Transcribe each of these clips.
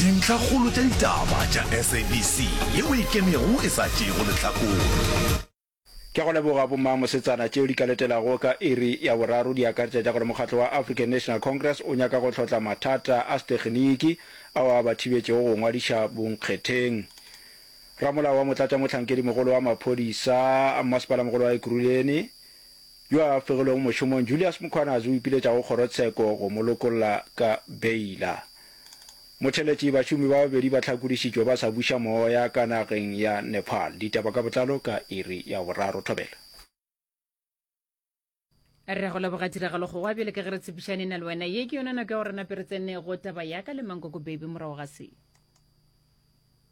Dintlhakgolo tša ditaba tša SABC ye o e kemego e sa tšeego lehlakore. Ke a go leboga bomma mosetsana. Tšeo di ka letelago ka iri ya boraro di akaretša tša gore mokgatlo wa African National Congress o nyaka go hlotla mathata a sethekniki ao a ba thibetšego go ngwadiša bonkgetheng. Ramolao wa motlatšamohlankedimogolo wa maphodisa a mmasepala-mogolo wa Ekurhuleni yo a fegilwego mošomong Julius Mkhwanazi o ipiletša go kgorotsheko go mo lokolla ka beila. Motheletši, Bašomi ba babedi ba hlakodišitšwe ba sa buša moya ka nageng ya Nepal. Ditaba ka botlalo ka iri ya boraro. Thobela. Re a go leboga tiragalo go wa bjale ka ge re tshepišane na le wena ye ke yona nako ya go re nape re tsenego taba yaka le mankoko baby morago ga se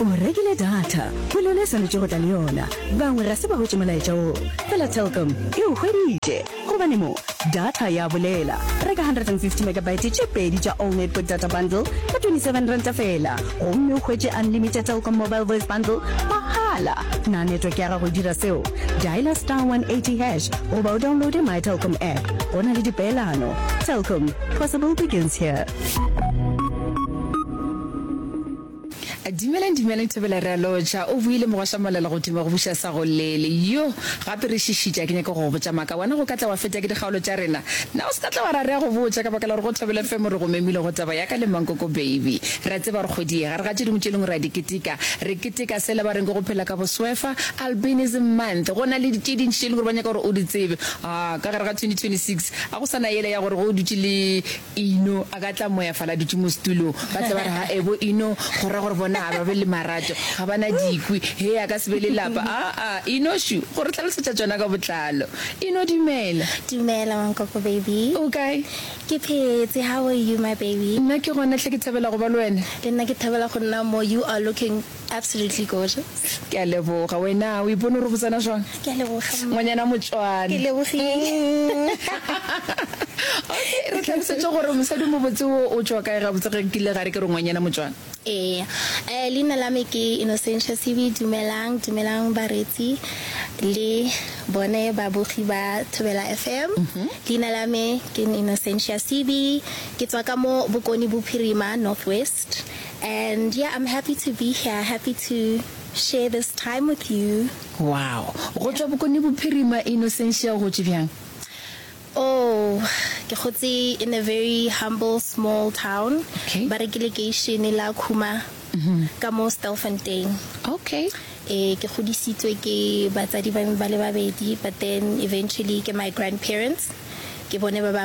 o rekile data go le yona e swanetše go tla le yona bangwe ga se ba hwetše molaetša wo fela telkom e o hweditše gobane mo data ya bolela reka 150 megabyte tše pedi tša all network data bundle ka 27 ranta fela gomme o hwetše unlimited telkom mobile voice bundle mahala na network ya gago e dira seo dialer star 180 hash goba o downloade my telkom app go na le dipeelano telkom possible begins here Dimeleng, dimeleng Thobela re a lotšha. O boile mogwasha molala go tuma go buša sa go lele. Yo, gape re šišitša, ke nyaka go go botša maka. Wena go ka tla wa feta ke dikgaolo tša rena? Na o se ka tla wa ra rea go botša ka baka la gore go Thobela FM re go memile go taba ya ka le Mankoko Baby. Re a tseba gore kgwedi ye gare ga tše dingwe tše dingwe re a di keteka. Re keteka sela ba reng ke go phela ka boswefa, Albinism Month. Go na le tše dintši tše e leng gore ba nyaka gore o di tsebe. Haa, ka gare ga 2026 a go sa na yela ya gore ge o dutše le Ino a ka tla moya fala dutše mo setulong, ba tle ba re, Ha ebo Ino, go ra gore bona ga ba be le marato, ga ba na dikwi, hee a ka se be le lapa. Aa, Ino, shu, go re hlalosetša tšona ka botlalo. Ino, dumela. Dumela, Mankoko baby. O kae? Ke phetse, how are you, my baby? Nna ke gona hle ke thabela go ba le wena. Le nna ke thabela go nna mo, you are looking. Absolutely gorgeous. Ke a leboga. Wena o ipone gore botsana jwang? Ke a leboga. Ngwanyana motswana. Ke lebogile. Okay, re tlhalosetse gore mosadi mobotse o o tswa kae gabotse ge kile ga re ke re ngwanyana motswana? Ee. Eh, leina la me ke Innocentia Sibi. Dumelang, dumelang bareetsi le bone babogi ba Thobela FM. Leina la me ke Innocentia Sibi. Ke tswa ka mo Bokone Bophirima, North West. And yeah I'm happy to be here happy to share this time with you. Wow go tšwa Bokone Bophirima Innocentia o gotše bjang? Oh ke gotse in a very humble small town Okay. ba re ke lekeišene la Khuma ka mo Stelfontein. Okay. Eh ke godisitswe ke batsadi ba me ba le babedi but then eventually ke my grandparents ke bone ba ba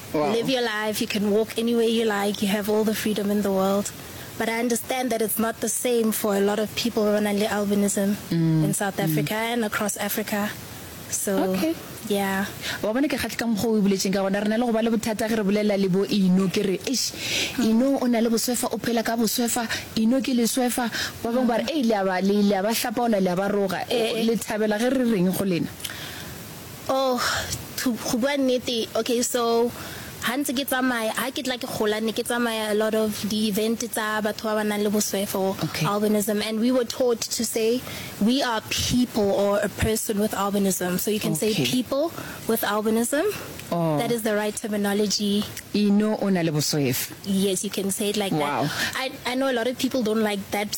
Live your life, you can walk anywhere you like, you have all the freedom in the world. But I understand that it's not the same for a lot of people ba ba nang le albinism in South Africa and across Africa. So, Okay. yeah. Wa bona ke kgahle ka mokgwa o e boletšeng ka gona. Re na le go ba le bothata ge re bolelela le bo Ino ke re, Eish, Ino o na le boswefa, o phela ka boswefa, Ino ke leswefa. Ba bangwe ba re, Ei, le a ba, le, le a ba hlapaola, le a ba roga. O, Eh. le thabela ge re reng go lena? Oh to go bua nnete okay so ha ntse ke tsamaya ha ke tla ke gola ne ke tsamaya a lot of di event tsa batho ba ba nang le boswefo Okay. albinism and we were taught to say we are people or a person with albinism so you can say Okay. people with albinism Oh. that is the right terminology Ino o na le boswefa. yes you can say it like Wow. that I, I know a lot of people don't like that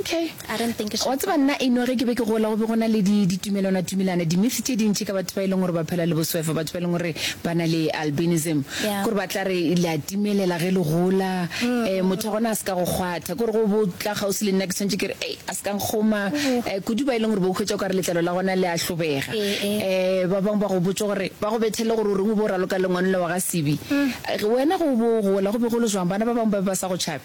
Okay. I don't think Wa tseba nna eno ge ke be ke gola go be go na le di ditumelwana tumelana di myth tše dintši ka batho ba e leng gore ba phela le boswefa batho ba e leng gore ba na le albinism Yeah. gore ba tla re le a timelela ge le gola eh motho gona a se ka go kgwatha gore go bo tla gausi le nna ke tshwanetse ke re ei a se ka nkgoma eh kudu ba e leng gore bo khwetša o ka re letlalo la gona le a hlobega Eh, eh. eh ba bangwe ba go botsa gore ba go bethele gore o reng o bo raloka lengwanole wa ga sibi Eh, wena go bo gola go be go le jwang bana ba bangwe ba be ba sa go tšhabe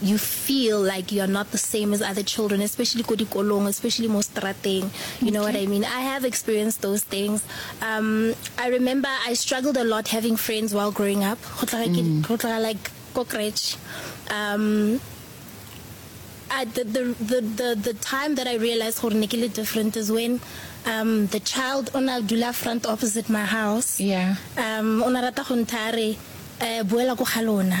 you feel like you're not the same as other children especially ko dikolong especially mo strateng you know what I mean I have experienced those things um I remember I struggled a lot having friends while growing up go tla ke mm. go tla like ko crèche um at the, the the the the time that I realized gore ne ke le different is when um the child ona dula front opposite my house yeah um ona rata go nthare eh buela go ga lona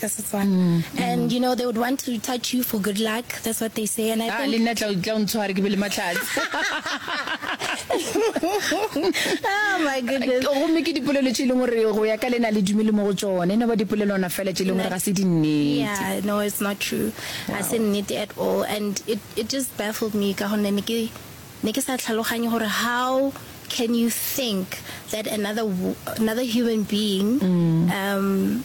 ka Setswana and you know they would want to touch you for good luck that's what they say and I ah, think le nna tla tla ntshware ke be le matlhatsi oh my goodness go mme ke dipolelo tše leng gore go ya ka lena le dumele mo go tsone ne ba dipolelo ona fela tše leng gore ga se di nnete yeah no it's not true wow. a se nnete at all and it it just baffled me ka gonne ne ke ne ke sa tlhaloganye gore how can you think that another another human being mm. um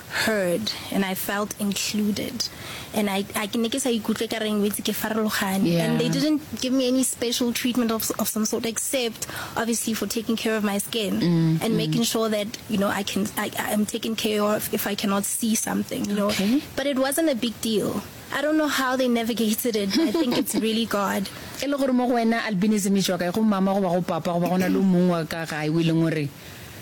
heard and I felt included and I I ke ne ke sa ikutlwe ka reng wetse ke farologane yeah. and they didn't give me any special treatment of of some sort except obviously for taking care of my skin mm, mm. and mm. making sure that you know I can I I am taken care of if I cannot see something you know okay. but it wasn't a big deal I don't know how they navigated it. I think it's really God. e le gore mo go wena albinism e tswa kae go mama goba go papa goba go na le mong wa ka gae o e leng gore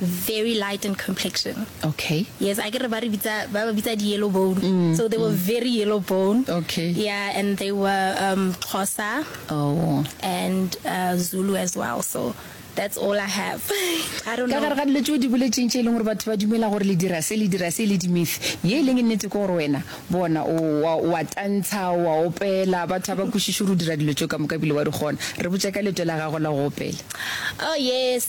very light in complexion. Okay. Yes, I get about bitsa ba bitsa di yellow bone. Mm, so they mm. were very yellow bone. Okay. Yeah, and they were um Xhosa. Oh. And uh, Zulu as well. So that's all I have. I don't know. Ka gare ga dilo tšeo di boletseng tše e leng gore batho ba dumela gore le dira se le dira se le dimyth ye e leng e nnete ke gore wena bona wa tantsha wa opela batho ba ba kwešiše gore o dira dilo tšeo ka moka bile wa di kgona re botse ka leto la gago la go opela oh yes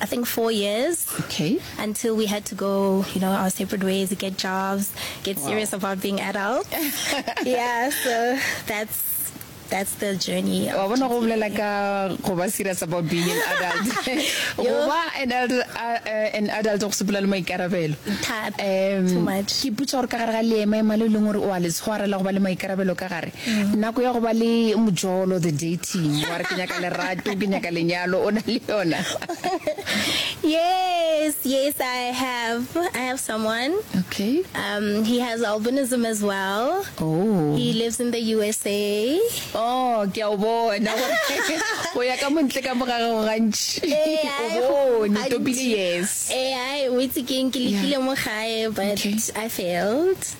I think four years. Okay. Until we had to go, you know, our separate ways, get jobs, get wow. serious about being adults. yeah, so that's that's the journey wa bona go bolela ka go ba serious about being an adult go ba an adult uh, an adult go sepela le maikarabelo um ke putsa gore ka gare ga leema ema le leng gore o a le tshwarela go ba le maikarabelo ka gare Nako ya go ba le mojolo, the dating. Wa re ke nyaka lerato, ke nyaka lenyalo, o na le yona? Yes, yes, I have. I have someone. Okay. Um, he has albinism as well. Oh. He lives in the USA. Oh, ke a o bona. O ya ka montle ka mogare go gantši. Eh, O ai, bone, gantši. topile yes. Eh, ai, o itse ke eng, ke lekile mo gae, but Okay. I failed.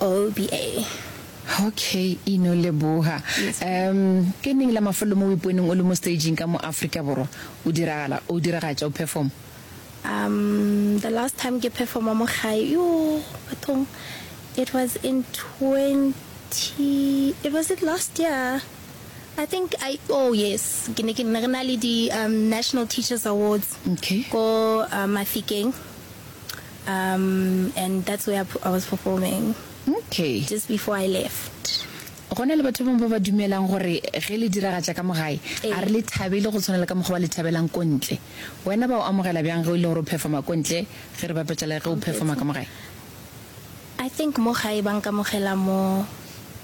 All BA. Ok, Ino leboga. Um, ke neng la mafelo mo o iponeng o le mo staging ka mo Afrika Borwa o diragala, o diragatša, o perform? Um, the last time ke performa mo gae, yo, bathong, it was in 20, it was it last year? I think I, oh yes, ke ne ke ne re na le di um, National Teachers Awards Ok. ko uh, Mafikeng. Um and that's where I was performing Okay. just before I left. Go na le batho ba bangwe ba ba dumelang gore ge le diragatša ka mo gae, Ee. a re le thabele go tshwana le ka mokgwa ba le thabelang ko ntle. Wena ba o amogela bjang ge o ile gore o performa ko ntle ge re bapetša le ge o performa ka mo gae? I think mo gae ba nkamogela more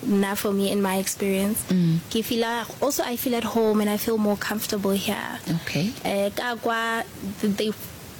nna for me in my experience. Ke feela also I feel at home and I feel more comfortable here. Okay. Eh ka kwa they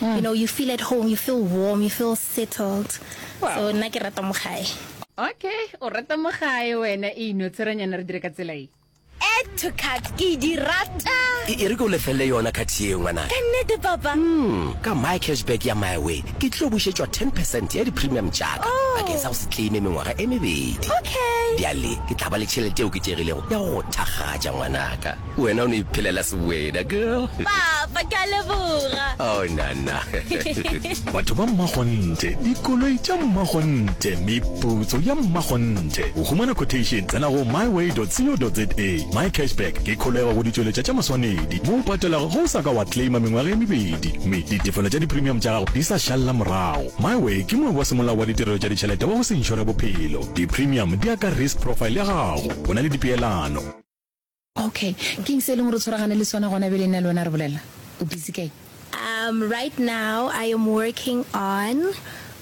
You know, you feel at home, you feel warm, you feel settled. Wow. So nna ke rata mo gae. Okay, o rata mo gae wena e ino tshweranyana re dire ka tsela e. Add to cart ke di rata. E, e re ke o lefelele yona cart yeo ngwana. Ka nnete papa. Mm, ka my cashback ya my way ke tlo bušetšwa 10 percent ya di-premium tšaka oh. bakeng sa go se claime mengwaga e mebedi. Okay. Bjale ke tla ba le tšhelete eo ke tšegilego ya go thakgatša ngwanaka. Wena o no iphelela seweda, girl. Papa, ke a leboga. Oh, nana. Batho ba mmakgonthe, dikoloi tša mmakgonthe, meputso ya mmakgonthe. Go humana quotation, tsena go myway.co.za. MyCashback ke kholego go ditšweletša tša maswanedi mo o patelago ge o sa ka wa claima mengwaga e mebedi mme ditefelo tša dipremium tša gago di sa šalela morago. MyWay ke moabi wa semolao wa ditirelo tša ditšhelete wa go se inšore bophelo. Dipremium di ya ka risk profile ya gago. O na le dipeelano. Ok, keng se e leng gore o tshwaragane le sona gona bjale nna le wena re bolela? O busy kae? Um, right now I am working on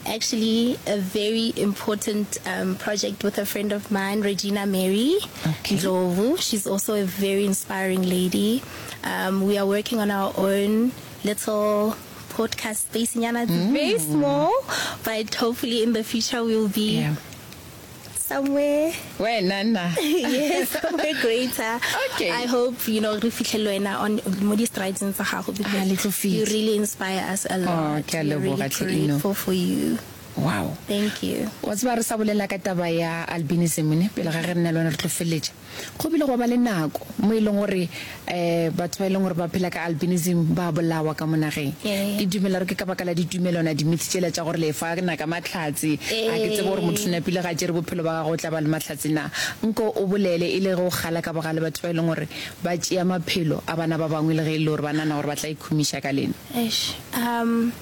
actually a very important um, project with a friend of mine, Regina Mary okay. Ndlovu. She's also a very inspiring lady. Um, we are working on our own little podcast space. Nyana, mm. very small, but hopefully in the future we'll be yeah. somewhere wena na yes somewhere greater okay i hope you know re fitlhele wena on mo di strides tsa gago because you really inspire us a lot oh ke a leboga tlhino for you wow thank you wa tseba re sa bolela ka taba ya albinism ne pele ga re nna le wena re tlo feletša Go bile gwa ba le nako mo e leng gore um batho ba e leng gore ba phela ka albinism ba bolawa ka mo nageng. Ke dumela gore ke ka baka la ditumelwana, di-myth tšela tša gore lefa na ka mahlatse. A ke tsebe gore mothona pele ga a tšere bophelo ba gagwe o tla ba le mahlatse na. Nko o bolele e le ge o kgala ka bogale batho ba e leng gore ba tšea maphelo a bana ba bangwe le ge e le gore ba nagana gore ba tla ikhumiša ka lena. Eish um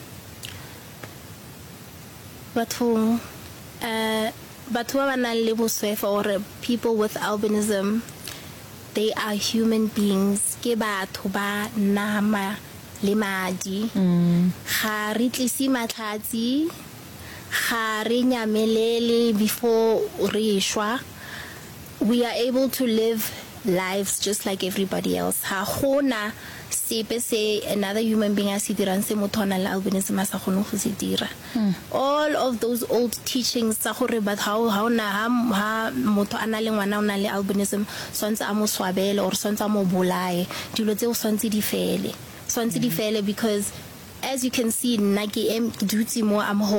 bathong um. Batho ba ba nang le boswefa or people with albinism they are human beings, ke batho ba nama le madi. Ga re tlise mahlatsi, ga re nyamelele before re shwa. We are able to live lives just like everybody else. Ga go na sepe se another human being a se dirang se motho a nang le albinism a sa kgoneng go se dira. All of those old teachings tsa gore but ha o na ha ha motho a na le ngwana o na le albinism swantse a mo swabele or swantse a mo bolaye dilo tse o swantse di fele swantse di fele because as you can see nna ke em dutse mo I'm home